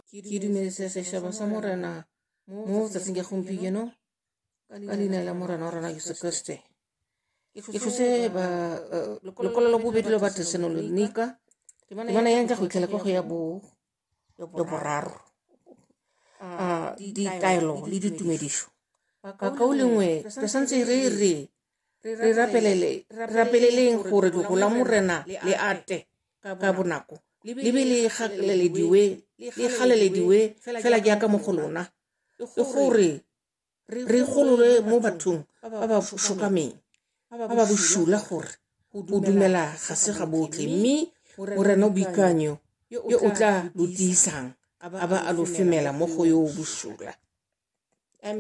ke dumeletse sešaba sa morena mo tsatsing ya gompieno ka leina la morena wa rona jesu kriste ke tlose lekwalo la bobedi la batesenonika temana yang ka go itlhela ka go ya bo ya boraro ditaelo le ditumedišo kakao lengwe re santse re re re rapeleleng gore logo la morena le ate ka bonako le be le galelediwe le galelediwe fela jaaka mo go lona le gore re gololwe mo bathong ba ba shokameng ba ba bosula gore go dumela ga se ga botlhe mme morena o boikanyo yo o tla lo tiisang a ba a lo femela mo go yo o bosula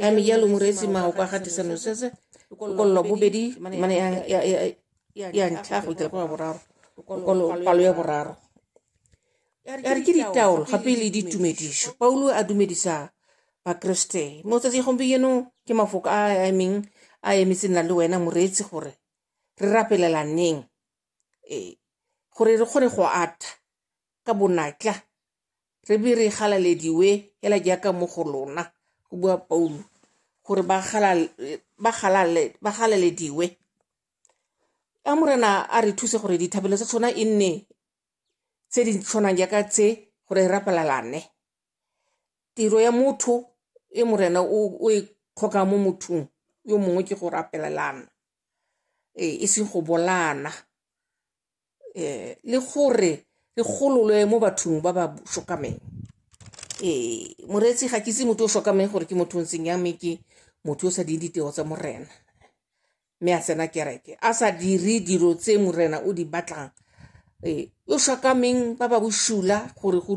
a mi yalo mu resi ma o kwa gati sa no sese lokololo bobedi mana ya ya ya ya ntlha go itela kwa boraro lokolo palo ya boraro ya re ke ditaolo gape le ditumediso paulo a dumedisa bakreste mo tsatsi gompieno ke mafoko a a emeng a emetse nna le wena moreetsi gore re rapelelaneng ee gore re kgone go ata ka bonatla re be re galalediwe hela jaaka mo go lona go bua paulo gore ba galalediwe a morena a re thuse gore dithabelo tsa tshwana e nne tse di tshwanang jaaka tse gore e rapelalane tiro ya motho e morena o e tlhoka mo mothong yo mongwe ke go rapelelana e seng go bolana um le gore re gololwe mo bathong ba ba shokameng um eh, moreetsi ga ke itse motho o shokameng gore ke motho o ntseng ya mme ke motho o sa ding ditego tsa morena mme a tsena kereke a sa dire dilo tse morena o di batlang um o shokameng ba ba bosula gore go